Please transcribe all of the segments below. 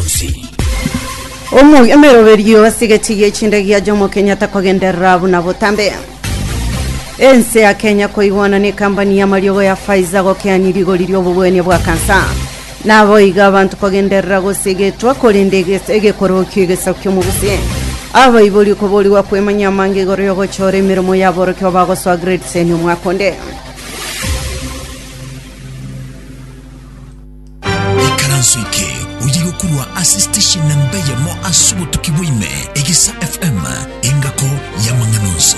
bionsi. Omoemeroberio ase egechii gi'echinde gia Jomo Kenyatta kogenderera buna botambe. Ense ya Kenya koigwana n'ekambani y'amariogo ya Pfizer gokeani rigori ri'obogwenia bwa kansa. Naboigo abanto kogenderera gosegetwa korenda eges- egekorokio egesaku ki'omogusii. Abaibori koborigwa kwemanya amange igoro y'ogochora emeremo y'aborokigwa bagosoa grade 10 omwaka onde. Ekaranso eke oyiga korwa ase station na mbeyemo ase obotuki bwaime, Egesa FM, engako y'amang'ana onsi.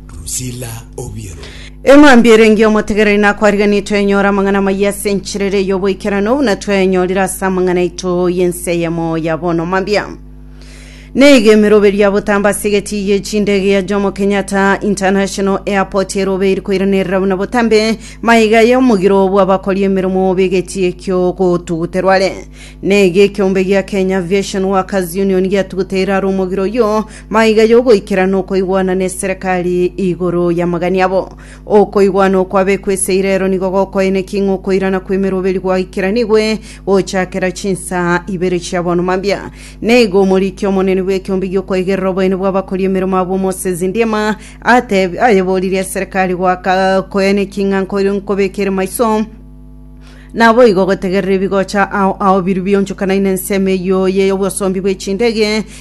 Drusilla Obiero. eng'ambi erengi omotegereri nakwariganire twenyora amang'ana amayia ase enchera ere y'oboikeranu buna twayanyorire ase amang'ana aito y'ense eyemo ya bono mambia Neigo emeroberio ya botamba ase egetiyi gie chindege ya Jomo Kenyatta International Airport erobeiri koiranerera buna botambe maiga ya omogiro bw'abakori emeremo b'egetiyi ekio gotuguterwa are. Neigo ekeombe gia Kenya Aviation Workers Union giatuguteire are omogiro oyio maiga ya ogoikerana okoigwana na eserekari igoro y'amagani abo. Okoigwana okwa bekweseire ero nigo gokoeneki ng'a okoirana kw'emeroberio gwaikeranigwe Gochakera chinsaa ibere chia bono mambia, neigo omoriki omonene bw'ekeombe gi'okoegerera oboyene bw'abakori emeremo abwo Moses Ndiema ateb- ayeboririe eserekari goaka koyana eking'a nkoirwe nkobeka ere maiso naboigo gotegerera ebigocha ao ao biru bionchokanaine ensemo eyio ye obosombi bwe chindege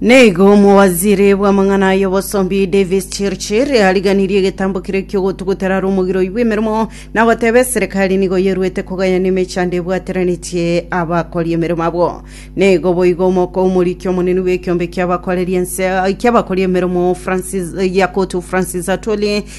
Nigo omowaziri bw'amang'ana y'obosombi Davis Chirchir ariganirie egetambo keria ki'ogotuguta arare omogiroi bw'emeremo na goteba eserekari nigo yeruete kogayana emechando ebwateranetie abakori emeremo abwo. Nigo boigo omouko omoriki omonene bw'ekiombe ki'abakori emeremo Francis Atwoli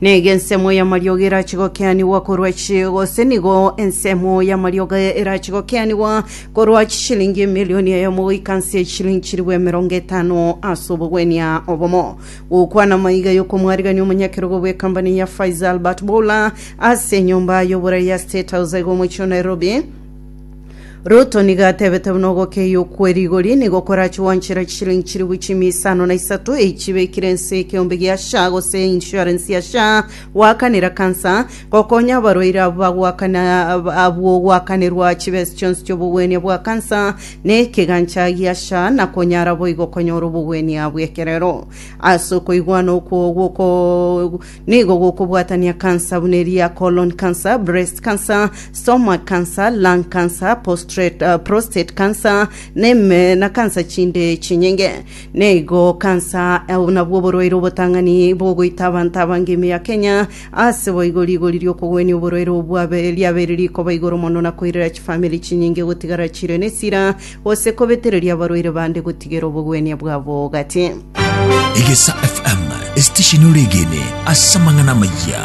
Nigo ensemo y'amariogo erache gokeanigwa korwa chi- gose nigo ensemo y'amariogo erache gokeanigwa korwa chishilingi emilioni eyemo goika nse ya chishilingi chilifu emerongo etano ase obogwenia obomo. Gokwana amaiga y'okomwarigania omonyakerogo bw'ekambani ya Pfizer Albert Bourla ase enyomba y'oborai ya State House aiga omochie o Nairobi, Ruto nigo atebete buna ogokeyia okwe rigori nigo korachie gwanchera chishilingi chiribu chimia isano na isato eyi chibekire ense ekeombe gia SHA gose insurance ya SHA goakanera kansa, gokonya abarwaire abwo bagoakana ab- abwo goakanerwa chibesa chionsi chi'obogwenia bwa kansa nekegancha gia SHA na konyara boigo konyora obogwenia bw'ekerero. Ase okoigwana okwo gw'oko Nigo gokobwatania cancer buna eria colon cancer, breast cancer, stomach cancer, lung cancer, postrate- eh, prostate cancer, na eme na cancer chinde chinyinge. Nigo cancer eh, buna bwo oborwaire obotang'ani bogoita abanto abange ime ya Kenya, ase boigo rigori ri'okogwenia oborwaire obo bwabe- riabeire rikoba igoro mono na koirera chifamiri chinyinge gotigara chire nesira gose kobetereria abarwaire bande gotigera obogwenia bwabo gati. Egesa FM, esitesheni ore egene ase amang'ana amayia.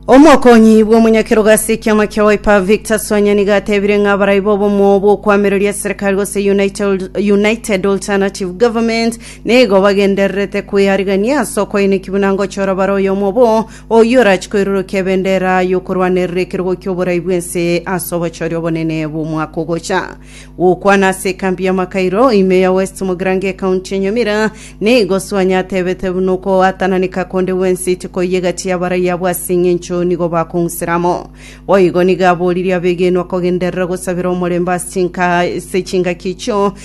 Omokonyi bw'omonyakerogo ase ekiama kia Wiper Victor Sonya nigo atebire ng'a abarai bobomo bw'okwamereria serikali gose United, United Alternative Government nigo bagendererete kwearigania ase okoineki buna ngochora bare oyomo obo Oyio orachie koirorokia ebendera y'okorwanerera ekerogo ki'oborai bw'ense eye ase obochori obonene bw'omwaka ogocha. Gokwana ase ekambi ya Makairo, ime ya West Mogrange ekaunti ya Nyamira, nigo Suanya atebete buna okogaatananeka konde gw'ense etikoiyo egati y'abarai abwo ase eng'encho nigo bakong'usera amo. Boigo nigo aboririe abegenwa kogenderera gosabera omorembe ase chinka ase chingaki echio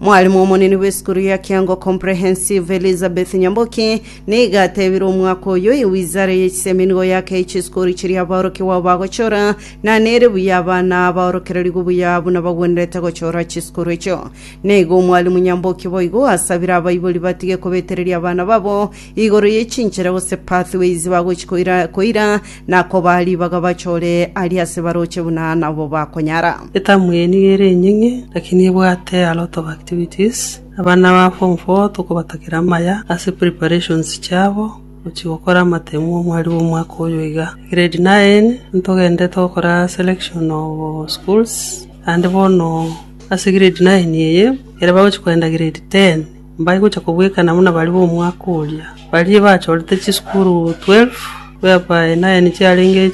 Mwalimu omonene bw'esukuru ya Kiango Comprehensive Elizabeth Nyamboki nigo atebire omwaka oyo ewizara yechise emengo yake echesukuru chiria abaorokiwa bagochora, na nere buya abana baorokererigwe buya buna bagwenerete gochora chisukuru echio. Nigo omwalimu Nyamboki boigo asabire abaibori batige kobetereria abana babo Igoro ye chinchera gose pathways bagochi koira koira na kobaa ribaga bachore aria ase baroche buna nabo bakonyara. Etamu eye nigo ere enying'e lakini ebwate a lot of activities. Abana ba form four tokobatakera amaya ase preparations chiabo gochia gokora amatemu omwarimu omwaka oyo iga. Grade nine ntogende togokora selection of schools and bono ase grade nine eye ere bagochia kogenda grade ten Mbaye gocha kobwekana buna baria b'omwaka oria, baria bachorete chisukuru twelve, twebwaye naende chiarenge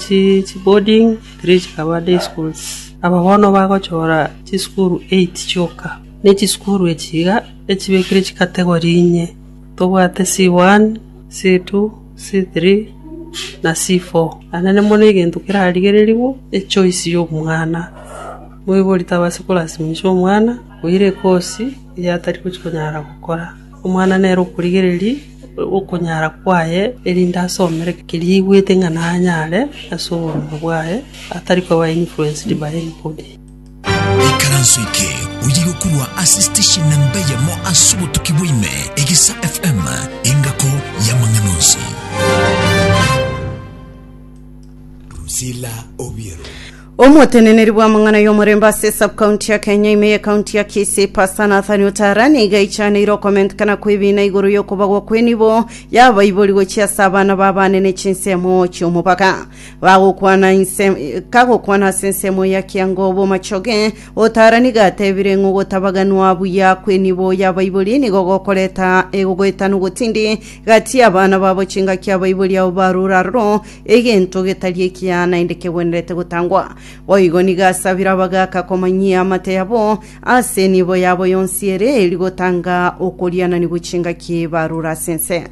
chiboarding, three chikaba day schools. Aba bono bagochora chisukuru eight chioka, ne chisukuru echi iga echibekire chikategori inye, tobwate C1, C2, C3, na C4. Naende ne mono egento kerarigererigwe echoice y'omwana, moibori tabase korasimisha omwana. Koira ekosi eye atari gochia konyara gokora, omwana nere okorigereria okonyara kwaye, erinde asomere keria aigwete ng'a nanyare ase oborimo bwaye, atari koba influenced by anybody. Ikaranso eke oyirwe korwa ase station namba eyemo ase obotuki bwa ime, Egisa FM, engako y'amang'ana onsi. Drusilla Obiero. Omoteneneri bw'amang'ana y'omorembe ase subcounty ya Kenya ime ye county ya Kisii Pastor Nathan Utara niga ichaneire okomentekana kw'ebiina igoro y'okobagwa kw'enibo y'abaibori gochia ase abana b'abaane ne chinsemo chi'omobaka bagokwana inse kagokwana ase ensemo ya kiango bomachoge Utara niga atebire ng'o gotabaganwa buya kw'enibo y'abaibori nigo gokoreta egogoetana ogotindi gati y'abana babo chingaki abaibori abo barure aroro Egento getari ekiya naende kegwenerete gotangwa. Boigo nigo asabire abagaaka komanyia amate yabo ase enibo yabo yonsi ere eri gotanga okorianani gwe chingaki barure ase ense.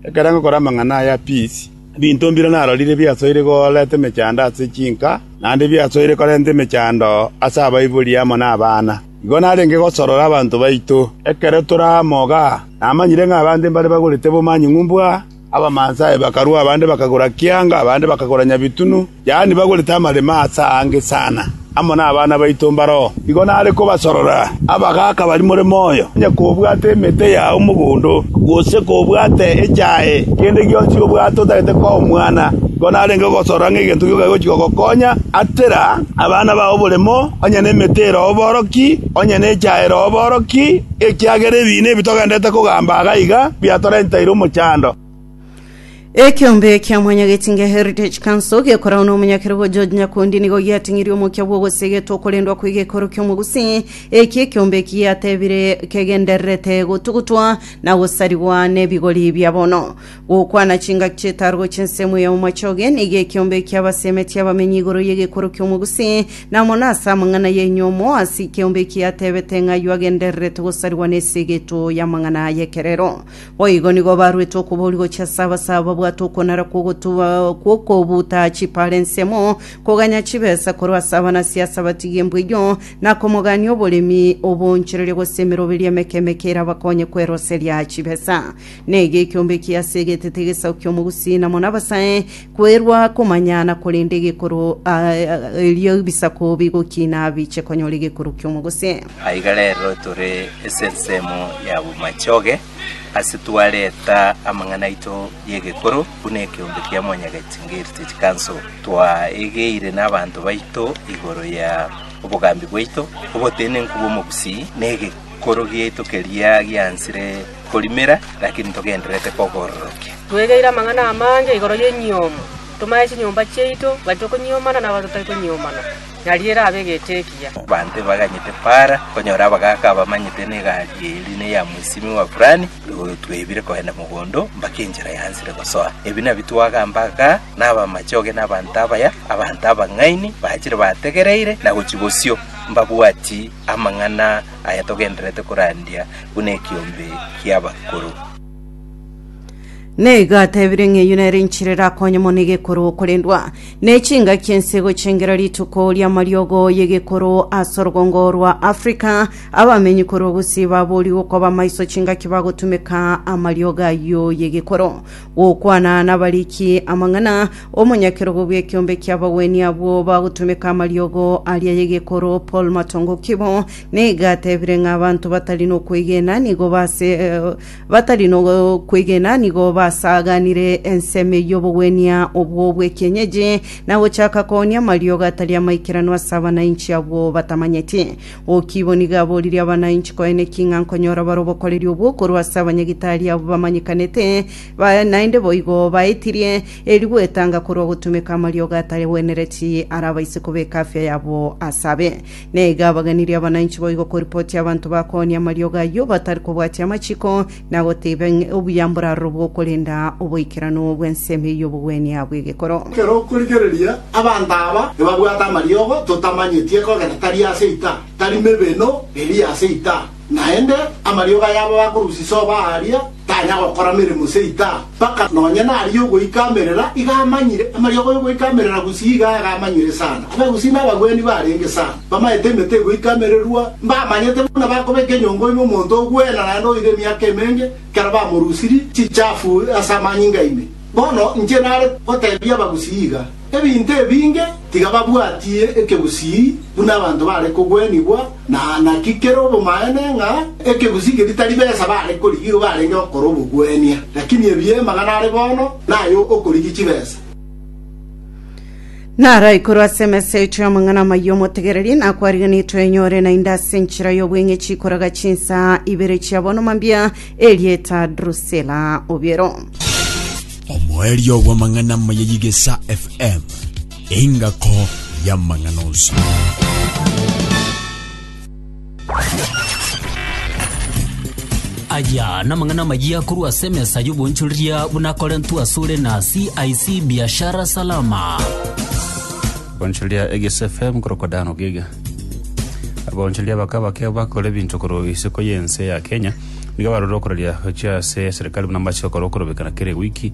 Ekero ngokora amang'ana aya peace, ebinto mbire narorire biasoire koreta emechando ase chinka, naende biasoire korenta emechando ase abaibori amo nabana. Igo narenge gosorora abanto baito ekero tore amo igaa, namanyire ng'a abande mbare bagorete b'omonyingu mbwa. Abamansae bakarua, abande bakagora kianga, abande bakagora nyabitunu, yaani bagorete amaremo aase aange sana, amo nabana baito mbaroo. Igo nare kobasorora abagaaka barimore moyo, onye kobwate emete ya omogondo, gose kobwate echae, kende gionsi obwate otagete koa omwana, igo narenge gogosorora ng'a egento gioka gegochia gogokonya. Atera abana bao oboremo, onye nemete eroo oboroki, onye nechae eroo oboroki. Ekiagera ebiina ebi togenderete kogamba iga iga biatorenteire omochando. Ekeombe kia Mwanyagetinge Heritage Council gekoragwa na omonyakerogo George Nyakundi nigo giating'irie omokia bw'ogosegetwa okorendwa kw'egekoro ki'Omogusii. Eki ekeombe eki giatebire kegendererete gotugutwa na gosarigwa n'ebigori bia bono. Gokwana chingaki chetarogo chi'ensemo y'omochie oge nigo ekiombe eki'abasemi eki'abamenyi igoro y'egekoro ki'omogusii, na amo nase amang'ana y'enyomo ase ekiombe eki yatebete ng'a ayio agendererete gosarigwa n'esegeto y'amang'ana y'ekerero. Boigo nigo baruete okobori gochia ase abasaaba babwate okonara kw'ogotuba kw'okobuta chipaara ensemo, koganya chibesa korwa ase abanasiasa abatigi embwa eyio, na komogania oboremi obonchereria gose emeroberio emeke emeke erabakonye kweroseria chibesa. Nege ekiombe ekiya ase egetete egesaku ki'omogusi, na mona abasae kwerwa komanyana, korende egekoro ah, ah, erio ebisaku bigokina biche konyora egekoro ki'omogusi. Aiga rero tore ase ensemo ya bomache oge, ase twareta amang'ana aito y'egekoro buna ekiombe kia monyageti, Engirited Council. Twaegeire n'abanto baito igoro ya obogambi bwaito, obotenenku bw'omogusi, na egekoro giaito keria giansire korimera, lakini ntogendererete kobororokia. Twegeire amang'ana amange igoro y'enyiomo, tomaye chinyomba chiaito, bari tokonyiomana na abatotai konyiomana, na riire abe egete ekiya. Abanto ebaganyete para konyora abagaaka abamanyete negari eye eri neya moisimi wa Fulani, twebire kogenda mogondo mpaka enchera yansire gosoa. Ebi nabio twagamba aka nabamachoge na abanto abaya, abanto abang'aini bachire bategereire na gochia bosio mbabwati. amang'ana aya togendererete korandia buna ekiombe ki'abakoro. Naigo atebire ng'a eyio nere enchera erakonye mono egekoro okorendwa ne chingaki ense gochengera rituko ri'amariogo y'egekoro ase orogongo rwa Africa. Abamenyi korwa gusii baboorigwe okoba maiso chingaki bagotumeka amariogo ayio y'egekoro. Gokwana nabariki amang'ana omonyakerogo bw'ekeombe ki'abagwenia abwo bagotumeka amariogo aria y'egekoro Paul Matongo Kibo nigo atebire ng'a abanto batari nokwegena nigo base batari nokwegena nigo basaganire ensemo eye y'obogwenia obwo bw'ekienyeji na gochaka koonia amariogo atari amaikeranu ase abanainchi abwo batamanyeti Oki, ibo nigo aboririe abanainchi koeneki ng'a nkonyora bare obokoreria obwo korwa ase abanyagitari abwo bamanyekanete, bae naende boigo baetirie, eri gwetanga korwa gotumeka amariogo atagwenereti arabaise kobeka afya yabo ase abe. Naiga abaganirie abanainchi boigo koripotia abanto bakoonia amariogo ayio batari kobwatia amachiko, na goteeba ng'a obuya mborarorwe bw'okorenda oboikeranu bw'ensemo eyio obogwenia bw'egekoro. Ekero okorigereria abanto aba nibabwate amariogo totamanyeti ekogera tari ase ita, tari mebeno eri ase ita, naende amariogo ayabo bakorusia sobo aaria tanya gokora meremo se ita, mpaka nonye naria ogoika amerera iga amanyire, amariogo yogoika amerera gusii iga agamanyire sana, abegusii na abagwenia barenge sana. bamaete emete egoika emererwa, mbamanyete buna bakobeka enyongo ime omonto ogwena naende oire emiaka emenge, ekero bamorusirie chichafu ase amanyinga ime. Bono inche nare gotebia abagusii iga, Ebinto ebinge tiga babwatie ekegusii buna abanto baare kogwenigwa, na naki kere obomaene ng'a ekegusii keria tari besa baare korigia igo barenge gokora obogwenia, lakini ebiema ng'a nare bono naye okorigia chibesa. Naraikorwe ase emesecho y'amang'ana amayia omotegereria, nakwariganetwe enyore naende ase enchera y'obweng'echi ikoraga chinsa ibere chia bono mambia, erieta Drusela obiero. omoerio bw'amang'ana amaya y'egesa fm engako y'amang'ana onsi Aya namang'ana amayia korwa ase emesa y'obonchoreria buna Korinto asore na CIC Biashara Salama. Bonchoria Egis FM korokwa Dano Giga. Bonchoria baka bake bakora ebinto koro isiko y'ense ya Kenya niga barore okoraria gochia ase serikali buna mbache gokora okorobekana kera ewiki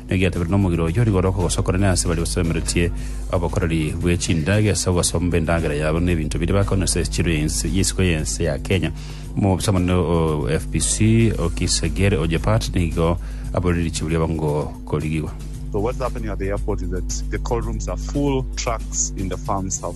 Negiatabeire nomogiro oyio rigoro okogosokora ne ase baria basemeretie obokoreri bwe chindaga ase ogosomba endagera yabo ne ebinto biria bakona ase echiro yense yesiko yense ya Kenya. Omobisa omonene o FBC Okisegere Ojepat nigo aborire richibu riabo ngo korigigwa. So what's happening at the airport is that the cold rooms are full, trucks in the farms have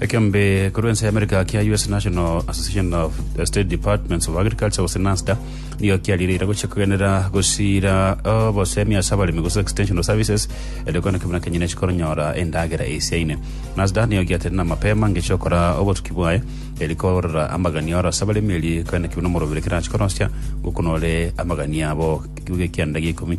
Ekeombe korwa ense y'Amerika kia US National Association of State Departments of Agriculture, gose NASDA, nigo kiarigeire gochia kogenera gosiira obosemi ase abaremi gose extension of services ere kooneka buna kenyene chikoronyora endagera eisiaine. NASDA nigo giatenena mapema ngechi okora obotuki bwaye eri korora amagania aro ase abaremi eri kooneka buna omoroberi kerache konosia ngokuna ore amagania abo kibuga ekianda gia ikomi.